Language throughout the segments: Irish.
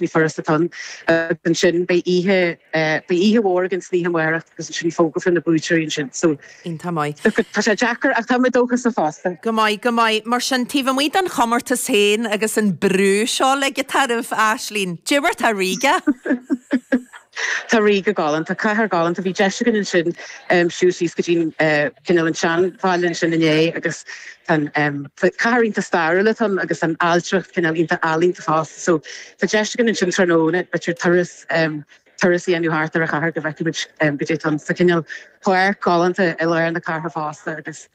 Ní furasta tonn. Agus ansin beidh oíche, beidh oíche mhór againn san oíche amárach agus ansin fógrófar na buaiteoirí ansin. So, tá maith. Tá sé deacair ach tá muid dóchasach fosta. Go maith, go maith. Mar sin, taobh amuigh den chomórtas féin agus an brú seo uilig atá oraibh, Aisling, cad é mar atá Ríoga? Tá Ríoga galánta, cathair ghalánta, bhí deis againn ansin siúl síos go dtí an cineál an seanbhaile ansin inné agus cathair iontach stairiúil atá ann agus tá an ailtireacht cineál iontach ealaíonta fosta. So tá deis againn ansin tráthnóna b'fhéidir turas, turas a dhéanamh thart ar an chathair go bhfeicfidh muid caidé atá ann. Tá cineál páirc ghalánta i lár na cathrach fosta agus.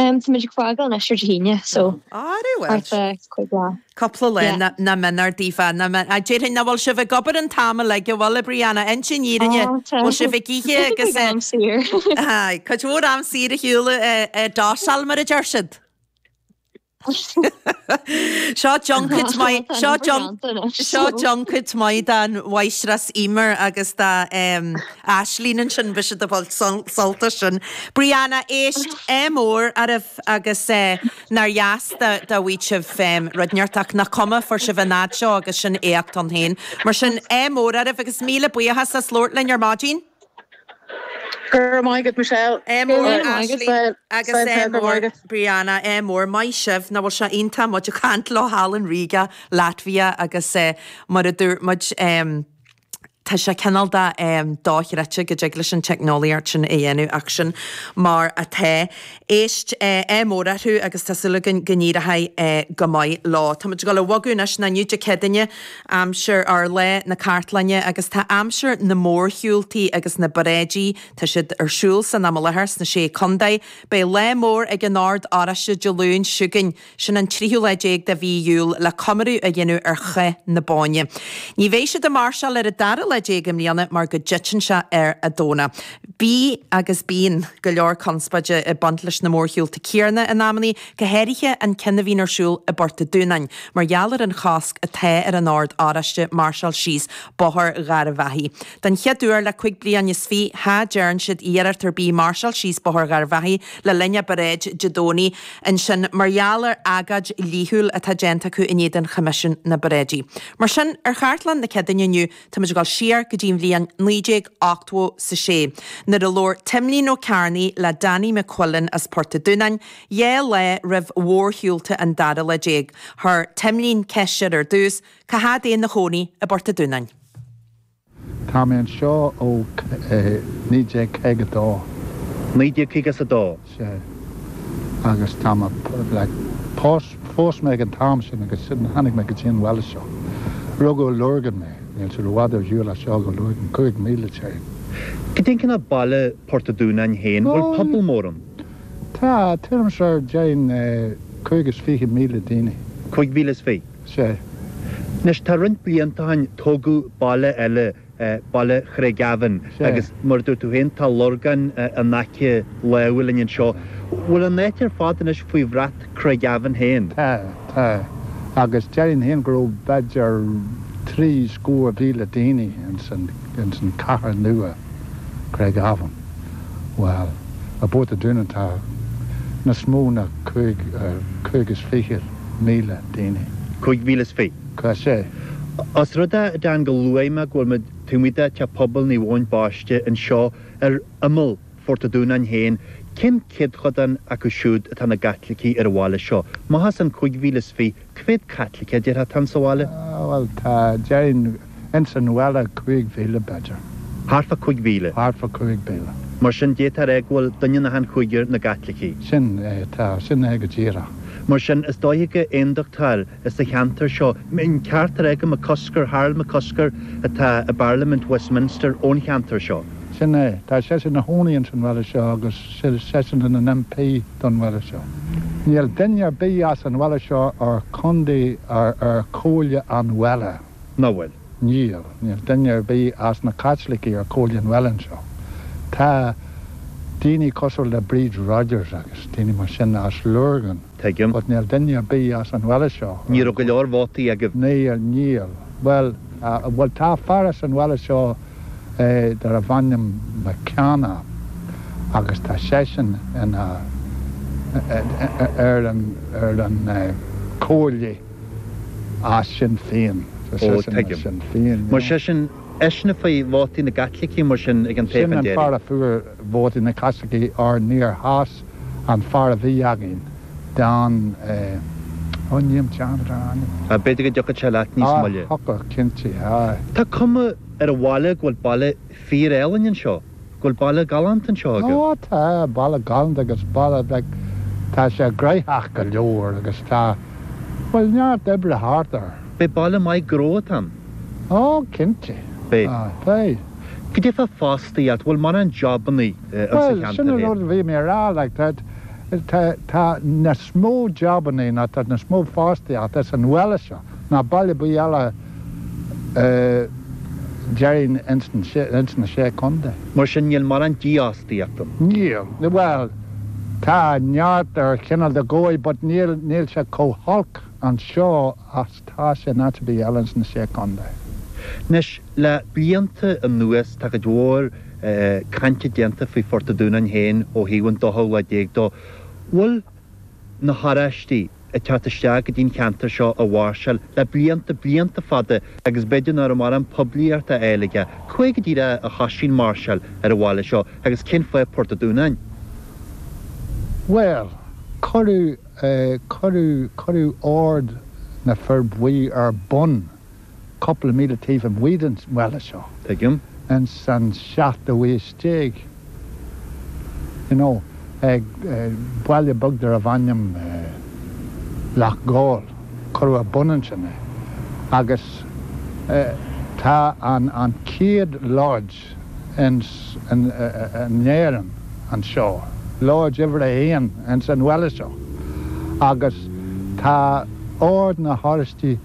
Ehm táimid ag fágáil ansin Dé hAoine so Very well. thart ar cúig lá. Cúpla lá Yeah. ná min ar dífeá ná min. Á, déarfainn ná bhfuil sibh ag obair an t-am uilig an bhfuil, a Brianna, inis an fhírinne? Á tá. Bhfuil sibh ag ithe Bheifeá agus ag eh am saor. aye cuid mhór am saor a shiúl eh eh downtime mar a deir siad. Seo junket maith, seo junket, seo junket maith do Mháistreás Eimear agus do Aisling ansin, bhí siad ag baint sult as sin. Brianna, éist, ádh mór oraibh agus nár dheas dá bhfaigheadh sibh rud ínteacht ach nach cuma, fuair sibh an fad seo agus sin éacht ann féin. Mar sin, ádh mór oraibh agus míle buíochas as labhairt linn ar maidin. Go raibh maith agat, Michelle. Ádh mór ar Aisling agus ádh mór Brianna. Ádh mór. Maith sibh. Nach bhfuil sé iontach muid a chaint leo thall in Riga, Latvia agus mar a dúirt muid tá sé cineál dochreidte go dtig leis an teicneolaíocht sin a dhéanamh ach sin mar atá. Éist, ádh mór orthu agus tá súil againn go n-éireoidh go maith leo. Táimid ag dul a bhogadh anois, inniu Dé Céadaoine, aimsir ár Lá na Cartlainne agus tá aimsir na mórshiúltaí agus na bparáidí, tá siad ar siúl san am i láthair sna sé contae. Beidh lá mór ag an Ord Oráiste Dé Luain seo chugainn. sin an tríú lá déag de mhí Iúil, le comóradh a dhéanamh ar Chath na Bóinne. Ní bheidh siad ag máirseáil ar an dara lá déag i mbliana mar go dtiteann sé ar an Domhnach. Bhí, agus bíonn, go leor conspóide ag baint leis na mórshiúlta céanna in amannaí, go háirithe an ceann a bhíonn ar siúl i bPort an Dúnáin mar gheall ar an chosc atá ar an Ord Oráiste máirseáil síos Bóthar Gharbh Achaidh. Den chéad uair le cúig bliain is fiche cha dtearn siad iarracht ar bith máirseáil síos Bóthar Gharbh Achaidh le linn a bparáid Dé Domhnaigh ansin mar gheall ar agóid dhlíthiúil atá déanta acu in éadan Choimisiún na bparáidí. Mar sin, ar chartlann na Céadaoine inniu, táimid ag dul siar go dtí an bhliain naoi déag ochtó a sé, nuair a labhair Timlín Ó Cearnaigh le Danny McQuillan as Port an Dúnáin, dhá lá roimh mhórshiúlta an dara lá déag. Chuir Timlín ceist air ar dtús, cá fhad é ina chónaí i bPort an Dúnáin? Tá mé anseo ó 1952. 1952? Sea. Agus tá mé, like, phós mé ag an t-am sin agus ansin tháinig mé go dtí an bhaile seo. Rugadh i Lurgan mé. Níl sé i bhfad ar shiúl as seo go Lurgan, cúig míle téir. Cad é an cineál baile Port a' Dúnáin féin? Bhfuil pobal mór ann? Tá, tuairim is ar, déan, cúig is fiche míle daoine. Cúig mhíle is fiche? Sea. Anois tá roinnt blianta ó shin tógadh baile eile, baile Craigavon, sea, agus mar a dúirt tú féin tá Lurgan in aice láimhe linn anseo. Bhfuil an áit ar fad anois faoi bhrat Craigavon féin? Tá, tá. Agus déarfainn féin go raibh b'fhéidir trí scór mhíle daoine ins an, ins an cathair nua, Craigavon. Bhuel, i bPort an Dúnáin tá níos mó ná cúig, cúig is fichead. míle daoine. Cúig mhíle is fiche. Tá sé. Os rud é, a Dean, gur luaigh mé go bhfuil muid, tá muid i, tá pobal Naomh Eoin Baiste anseo ar imeall Phort a' Dúnáin féin, cén céadchodán acu siúd atá ina gCaitlicigh ar an bhaile seo? Amach as an cúig mhíle is fiche, cá mhéad Caitlicigh a déarfá atá insa bhaile? Bhuel, tá, déarfainn. Ins an bhaile cúig mhíle, b'fhéidir. Thart fá cúig mhíle. Thart fá cúig mhíle. Mar sin, d'fhéadfá a rá go bhfuil duine in achan chúigear ina gCaitlicigh. Sin é, tá, sin é go díreach. Mar sin, is dóiche gur Aondachtóirí sa cheantar seo, an ceart a rá gur McCusker, Harold McCusker, atá i bParlaimint Westminster ón cheantar seo. Sin é, tá seisean ina chónaí ins an bhaile seo agus seisean ina n-MP don bhaile seo. Níl duine ar bith as an bhaile seo ar contae, ar, ar chomhairle an bhaile. Nach bhfuil? Níl. Níl duine ar bith as na Caitlicigh ar comhairle an bhaile anseo. Tá daoine cosúil le Bríd Rodgers agus daoine mar sin as Lurgan. Tuigim. But níl duine ar bith as an bhaile seo. Ní raibh go leor vótaí agaibh. Níl, níl. Bhuel, bhuel tá fear as an bhaile seo darbh ainm McKenna agus tá seisean ina, ar an, ar an comhairle. As Sinn Féin, is Ó, as tuigim. Sinn Féin, Mar yeah. sé sin, eisean a fuair vótaí na gCaitlicigh, mar sin, ag an Sin toghchán an fear deiridh. a fuair vótaí na Caitlicigh óir níor sheas an fear a bhí againn don eh, ó níl 'm teanga darna ainm. Ah, b'fhéidir go dtiocfadh sé leat níos Ah, moille. thiocfadh, cinnte, aye. Tá cuma ar an bhaile go bhfuil baile fíor-álainn anseo. go bhfuil baile galánta anseo agaibh? Ó, tá, baile galánta agus baile beag, tá sé gnoitheach go leor agus tá, bhuel, neart oibre thart air. Beidh baile maith gnó atá ann. Ó, cinnte. Beidh. Ó, beidh. Cad é fá fhostaíocht, bhfuil mórán jobannaí ins an cheantar féin. Bhuel, sin an rud a bhí mé a rá, like, tá, tá, tá níos mó jobannaí ná tá níos mó fostaíocht ins an bhaile seo ná baile ar bith eile. deiridh ins na Sé Chontae. Mar sin, níl mórán dífhostaíocht ann. Níl. Bhuel, tá neart ar chineál de dhóigh but níl, níl sé chomh holc anseo agus tá sé in áit ar bith eile ins na Sé Chontae. Anois, le blianta anuas, tá cuid mhór cainte déanta faoi Phort a' Dúnáin féin ó thaobh an dóú lá déag dó. Bhfuil na hOráistigh ag teacht isteach go dtí an ceantar seo a mháirseáil le blianta, blianta fada agus b'fhéidir nach raibh mórán poiblíocht á fháil aige. Cá huair go díreach a thoisigh an mháirseáil ar an bhaile seo agus cén fáth Port a' Dúnáin? Bhuel, cuireadh, cuireadh, cuireadh Ord na Fir Bhuí ar bun. cúpla míle taobh amuigh den bhaile seo. Tuigim. Ins an seachtú aois déag, you know, ag, baile beag darb ainm Loch gCál, cuireadh ar bun ansin é. Agus tá an, an chéad lodge. Oráisteach in Éirinn anseo, Lodge uimhir a haon ins an bhaile seo, agus tá ord na hOráistí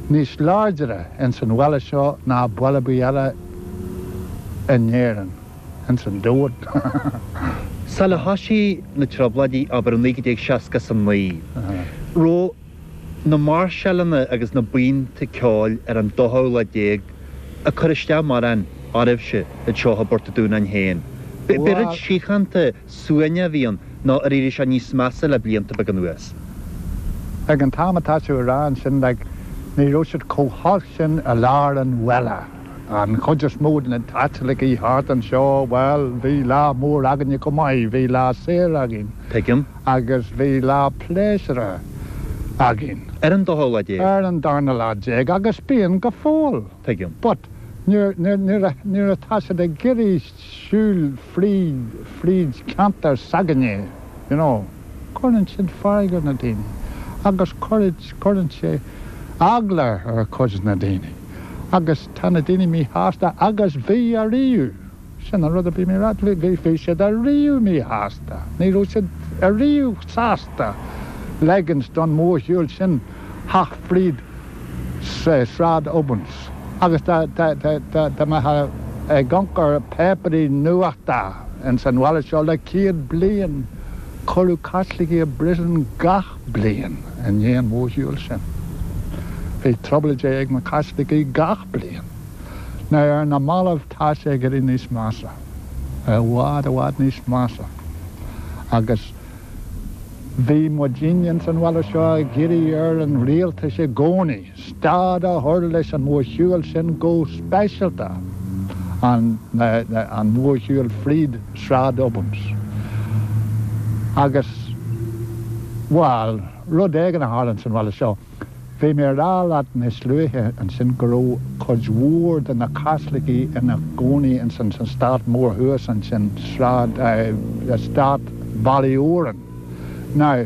níos láidre ins an bhaile seo ná baile ar bith eile in Éirinn, ins an domhan. Sula thoisigh na Trioblóidí, abair, i 1969, raibh. na máirseáileanna agus na buíonta ceoil ar an dóú lá déag ag cur isteach mórán oraibhse, i dtrátha Phort a' Dúnáin féin. B'é rud síochánta suaimhneach a bhí ann nó ar éirigh sé níos measa le blianta beaga anuas. Ag an t-am atá tú a rá ansin, like, ní raibh siad chomh holc sin i lár an bhaile. An chuid is mó de na Caitlicigh thart anseo, bhuel, bhí lá mór againne chomh maith, bhí lá saor againn. Tuigim. agus bhí lá pléisiúrtha againn. Ar an dara lá déag. Ar an darna lá déag agus bíonn go fóill. Tuigim. But nuair atá siad ag iarraidh siúl fríd ceantar s'againne, you know, cuireann siad fearg ar na daoine agus cuireann sé eagla ar chuid de na daoine agus tá na daoine míshásta agus bhí ariamh. Sin an rud a bhí mé a rá leat, bhí siad ariamh míshásta, ní raibh siad ariamh sásta leigint don mhórshiúl sin theacht fríd Sráid Obins agus dá mbeithfeá ag amharc ar páipéirí nuachta ins an bhaile seo le céad bliain, cuireadh Caitlicigh i bpríosún gach bliain i ndiaidh an mhórshiúil sin. Bhí trioblóidí ag na Caitlicigh gach bliain. Ar na mallaibh. Tá sé ag éirí níos measa, i bhfad, i bhfad níos measa, agus bhí muidinne ins an bhaile seo ag iarraidh ar an rialtas i gcónaí stad a chur leis an mhórshiúil sin go speisialta, an, an mhórshiúil fríd Sráid Ubans. Agus, bhail, rud éigin a tharlaíonn san bhaile seo. Bhí mé ag rá leat níos luaithe ansin go raibh cuid mhór de na Caitlicigh ina gcónaí ins an Stát mór thuas ansin, Sráid, eh, Stát Bhaile Odhráin. Now,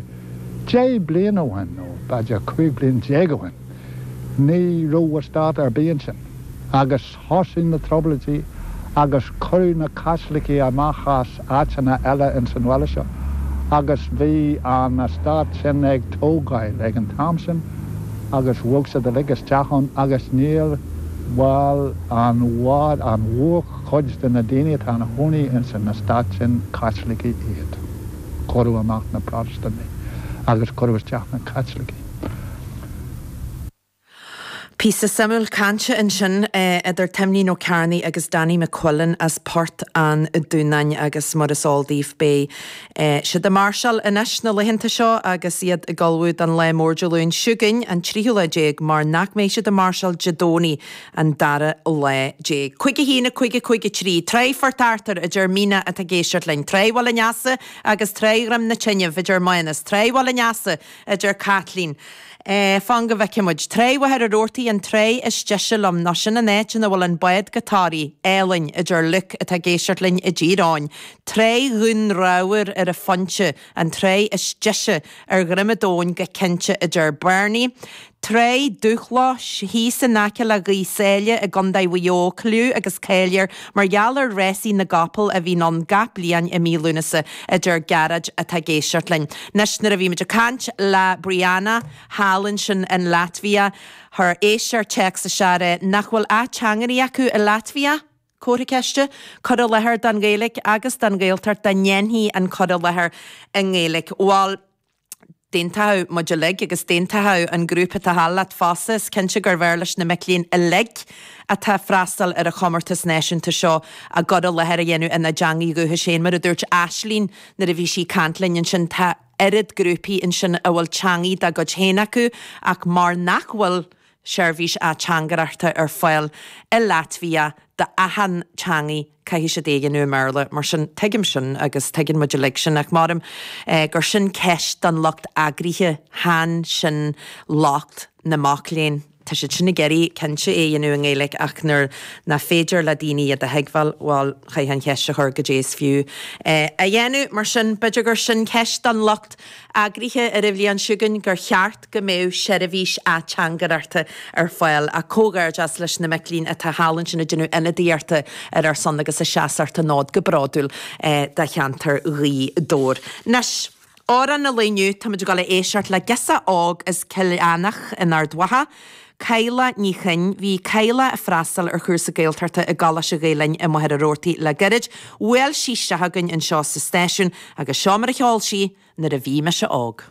deich bliain ó shin, nó b'fhéidir cúig bliain déag ó shin, ní raibh eastát ar bith ansin agus, Thosaigh na Trioblóidí agus cuireadh na Caitlicigh amach as áiteanna eile ins an bhaile seo agus bhí an eastát sin ag tógáil ag an am sin agus bhog siad uilig isteach ann agus ar ndóigh an, an mhórchuid de na daoine atá ina gcónaí ins an eastát sin, Caitlicigh iad. Cuireadh amach na Protastúnaigh agus cuireadh isteach na Caitlicigh. Píosa suimiúil cainte ansin idir Timlín Ó Cearnaigh agus Danny McQuillan as Port an Dúnáin agus mar is eol daoibh beidh siad ag máirseáil anois na laethanta seo agus iad ag ullmhú don lá mór Dé Luain seo chugainn an tríú lá déag mar nach mbeidh siad ag máirseáil Dé Domhnaigh an dara lá déag. Cúig a haon, a cúig, a cúig a trí. Tráigh Phort Arthur, a deir Maighne atá ag éisteacht linn, Tráigh Bhaile an Easa agus Tráigh Dhroim na Tineadh, a deir Mánas, Tráigh Bhaile an Easa, a deir Caitlín. Fan go bhfeicfidh muid. Tráigh Mhachaire Rabhartaigh an tráigh is deise liom, nó sin an áit ina bhfuil an bád go Toraigh álainn, a deir Liúc, atá ag éisteacht linn i dTír Eoghain. Tráigh Dhún Ramhar ar an Phointe an tráigh is deise ar dhroim an domhain go cinnte, a deir Bernie. Tráigh Dhumha Locha, thíos in aice le Gaoth Sáile i gContae Mhaigh Eo, cliú agus cáil air mar gheall ar rásaí na gcapall a bhíonn ann gach bliain i mí Lúnasa, a deir Gearóid atá ag éisteacht linn. Anois nuair a bhí muid ag caint le Briana, thall ansin in Laitvia, fuair muid téacs ag rá, nach bhfuil ateangairí acu i Laitvia? comhartha ceiste, cur i láthair don Ghaeilge agus don Ghaeltacht dá ndéanfaí an cur i láthair i nGaeilge. Bhal. d'aontódh muid uilig agus d'aontódh an grúpa atá thall leat fosta, is cinnte gurbh fhearr leis na mic léinn uilig atá ag freastal ar an chomórtas náisiúnta seo a gcur i láthair a dhéanamh ina dteanga dhúchais féin. Mar a dúirt Aislínn nuair a bhí sí ag caint linn ansin, tá oiread grúpaí ansin a bhfuil teanga dá gcuid féin acu ach mar nach bhfuil seirbhís ateangairachta ar fáil i Laitvia d'achain teangaidh caithfidh siad é a dhéanamh i mBéarla. Mar sin, tuigim sin agus tuigeann muid uilig sin ach maram gur sin ceist don lucht eagraithe, chan sin locht na mac léinn. Tá siad sin ag iarraidh, cinnte, é a dhéanamh i nGaeilge ach nuair nach féidir le daoine iad a thuigbheáil, bhuel, chaithfeá an cheist a chur, goidé is fiú é a dhéanamh? Mar sin, b'fhéidir gur sin ceist don lucht eagraithe ar an bhliain seo chugainn, gur cheart. go mbeadh seirbhís ateangaireachta ar fáil, ach comhghairdeas leis na mic léinn atá thall ansin ag déanamh ionadaíochta ar ár son agus ag seasacht an fhóid go bródúil do cheantar Ghaoth Dobhair. Anois, Amhrán an Lae Inniu, táimid ag dul a éisteacht le girseach óg as Cill Eanach in Ard Mhacha, Cadhla Ní Choinn. Bhí Cadhla ag freastal ar chúrsa Gaeltachta i gColáiste Ghael-Linn i Machaire Rabhartaigh le gairid. Bhuail sí isteach chugainn anseo sa stáisiún agus seo mar a cheol sí Nuair a Bhí Mise Óg.